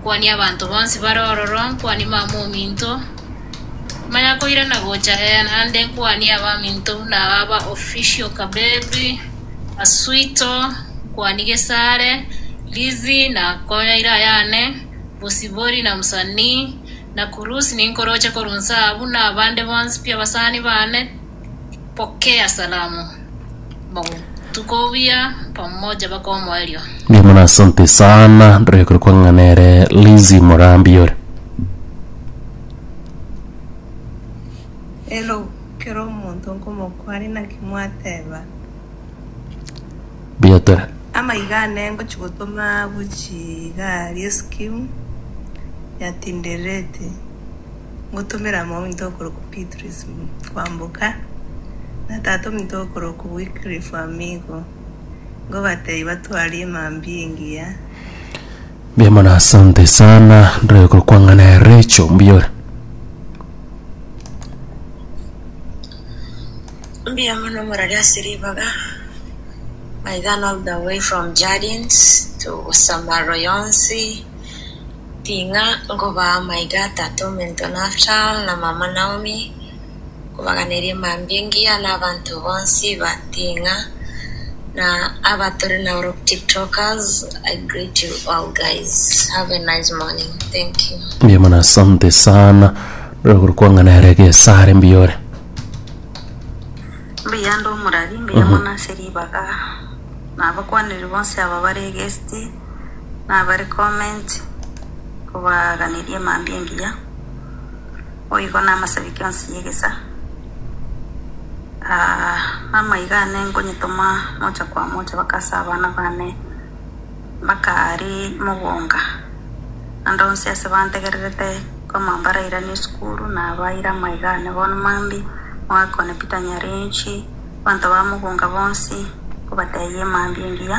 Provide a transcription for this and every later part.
Nkwanie abanto bonsi bare ororo, nkwanie Mamaominto, manya koirana gocha ee naende, nkwanie abaminto buna aba ba Official Kabebi, Aswito, nkwanie Gesare, Lizzy na konya ira ayane, Bosibori na Msanii, na Kurusi ninkoroche korwa inse aa buna abande bonsi pi abasani bane, Pokea salamu, bagotuka obuya pamoja bakomoerio. Ndio maana asante sana ndore kuri kwa ng'anere Lizzy Murambi ore. Hello, kera omonto nkomokwani naki mwateba? Buya tore. Amaiga ane ngochi gotoma gochia igari eskimu yatindererete. ngotomere amaunto okorokwa Beatrice Kwamboka na tata ominto okorokwa Wycliffe Wamigo, ngobateebie batwarie emambia engiya. Mbuya mono asante sana ndore kokwang'ana recho mbuya ore Mbuya mono morari ase ribaga. My gun all the way from Jardins to Busamarwa yonsi. Ting'a nkobaa amaiga atato, omento Naftal, na mama Naomi, nkobaganerie mambia engiya na abanto bonsi ba Ting'a, na abatore na group tiktokers, I greet you all guys, have a nice morning, thank you. Mbuya mono asante sana rogoro kwang'ana ere gesare mbiyore Mbuya ande omorari, mbuya mono ase ribaga, na abakwaneri bonsi aba bare egesiti. nabare comment kobaganeria mambia engiya, boigo namasabiki onsi yegesa amaiga ane nkonyetoma mocha kwa mocha mpaka ase abana bane mpaka aria mogonga naende onsi ase bantegererete koma mbarairanie esukuru nabaira amaiga ane bono mambia omwaka one Peter Nyarenchi abanto ba mogonga bonsi nkobatebia mambia engiya.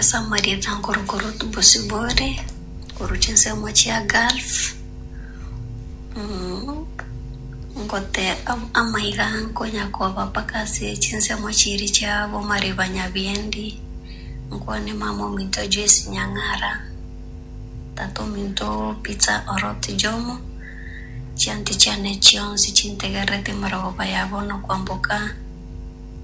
Ase amarieta nkorokoro Bosibore, korwa chinsemo chia Gulf, ngote amaiga nkonya koba mpaka ase chinsemo chiria chia Bomariba Nyabiendi, nkwane mama ominto Joyce Nyang'ara, tata ominto Peter Orot Jomo, chianti chiane chionsi chintegererete emarogoba ya bono kwamboka.